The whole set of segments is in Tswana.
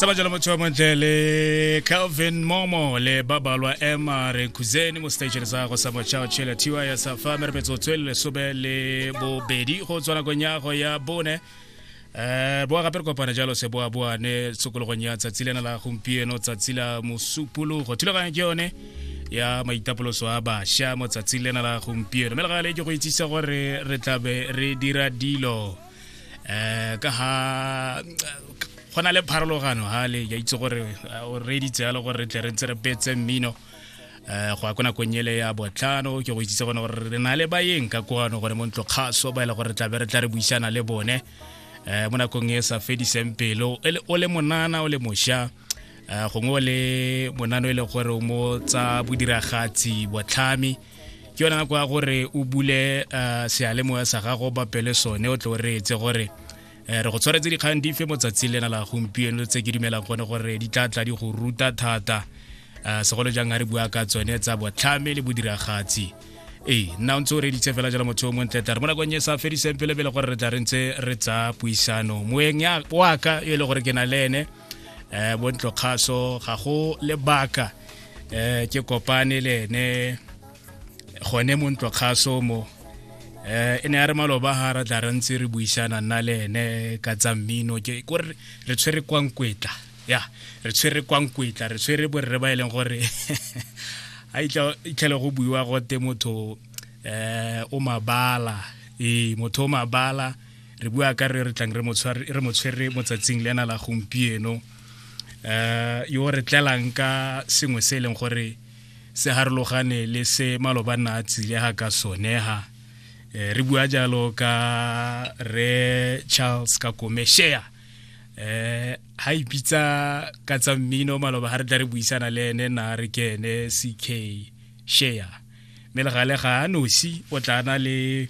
sa ba jalo motho wa montle le calvin momo le ba balwa emma rekhuzeni mo station sa go sa mochao chela tiwa ya sa fa mere metso tswele sobe le bobedi go tswa nakong ya go ya bone eh boa gape re kopana jalo se boa boa ne tsokologong ya tsatsi lena la gompieno tsatsi la mosupologo thulaganyo ke yone ya maitapoloso a basha mo tsatsing lena la gompieno mme le gale ke go itsisa gore re tlabe re dira dilo um ka ha go na le pharologano ha le ya itse gore o reeditse yalo gore re tle re ntse re petse mmino um go ya ko nakong ele ya botlhano ke go itsitse gone gore re na le bayeng ka kwano gone mo ntlo kgaso ba e le gore tlabe re tla re buisana le bone um mo nakong e sa fediseng pelo e o le monana o le mošwa um gongwe o le monano e le gore o mo tsa bodiragatsi botlhami ke yona nako ya gore o bule uh, sealemoya sa gago ba pele sone o tlo re etse gore eh, re go tshwaretse dikgang dife mo tsatsing lena la gompieno tse ke dumelang gone gore di tla tla di go ruta thata uh, segolo jang a re bua ka tsone tsa botlhame le bodiragatsi ee nna o ntse o reditse fela jalo motho o montle tla re mo nakong e sa fediseng pele pele gore re tla re ntse re tsa puisano moeng wa ka e le gore ke na le ene eh bontlo kgaso ga go lebaka eh ke kopane le ene gone mo ntlo kgaso mo eh e ne ya re maloba ga ra tla re ntse re buisana nna le ene ka tsa mmino ke kore re tshwere kwa nkwetla ya re tshwere kwa nkwetla re tshwere borre ba e leng gore a itlhele go buiwa gote motho eh o mabala ee motho o mabala re bua ka re re tlang re mo tshwere mo tsatsing le ena la gompieno um yo re tlelang ka sengwe se e leng gore se harologane le se maloba nna a tsile ga ka sonega um eh, re bua jalo ka re charles ka komeshea um eh, ga ipitsa ka tsa mmino maloba ga re tla re buisana le ene na re ke ene ck shea mme le gale ga a nosi o tla na le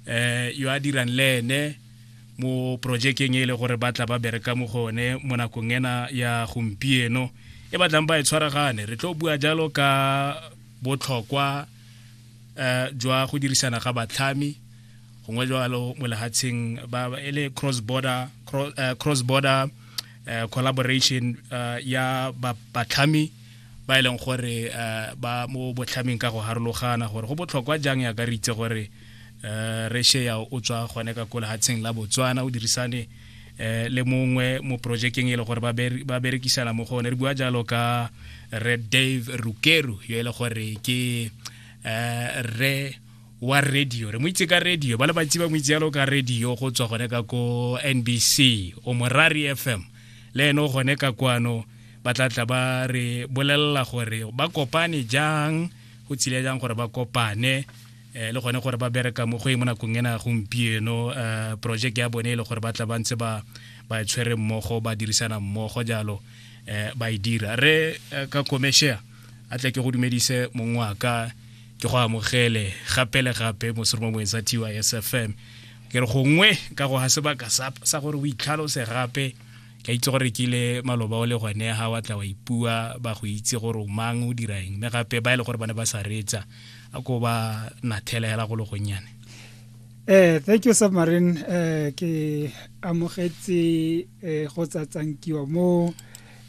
eh yo a dirang le ene mo projekeng e le gore ba tla ba bereka mo go one mo nakong ena ya gompieno e batlang ba e tshwaragane re tlo bua jalo ka botlhokwa eh jwa go dirisana ga batlhami gongwe jalo mo lehatsheng ba e le cross border cross eh, border eh, collaboration eh, ya ba- batlhami ba e leng gore eh, ba mo botlhameng ka go harologana gore go botlhokwa jang ya ka re itse gore eh, re shea o tswa gone ka ko lehatsheng la botswana o dirisane eh, le mongwe mo projekeng e le gore ba berekisana mo go one re bua jalo ka re dave rukeru yo e le gore ke re wa radio re mo itse ka radio ba le bantsi ba mo itse yalo ka radio go tswa gone ka ko nbc o morari fm le ene o gone ka kwano ba tla tla ba re bolelela gore ba kopane jang go tshile jang gore ba kopane eh, le gone gore ba bereka mo go e mo nakong ena gompieno eh, project ya bone e le gore ba tla ba ntse ba ba e tshwere mmogo ba dirisana mmogo jalo eh, ba e dira re ka commercial a tle ke go dumedise mong wa ka ke go amogele gape le gape mosoroma moeng sa tys fm ke re gongwe ka go ga sebaka sa gore o itlhalose gape ke itse gore ke ile maloba o le gone ga wa tla wa ipua ba go itse gore o mang o dira eng mme gape ba e le gore ba ne ba sa reetsa a ko ba nathela hela go le gonnyane eh thank you submarine eh ke amogetse eh go tsatsankiwa mo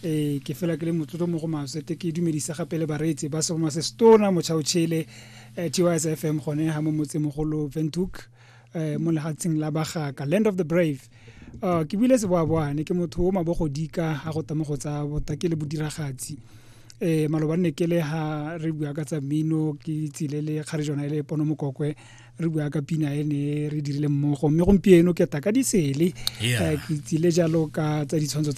eh ke fela ke le motlotlo mo go maswe te ke dumedisa gape le bareetsi ba soma se stona mochao chile eh, TYS FM gone ha mo motse mogolo Ventuk eh, mo lehatsheng la bagaka land of the brave uh, ke buile seboaboane ke motho o mabogodika a go tamo go tsa bota ke le bodiragatsi eh maloba ne ke le ha re bua ka tsa mino ke tsile le kgare jona e le pono mokokwe re bua ka pina e ne re dirile mmogo mme gompieno ke ta ka disele eh, ke tsile jalo ka tsa ditshwantsho tsa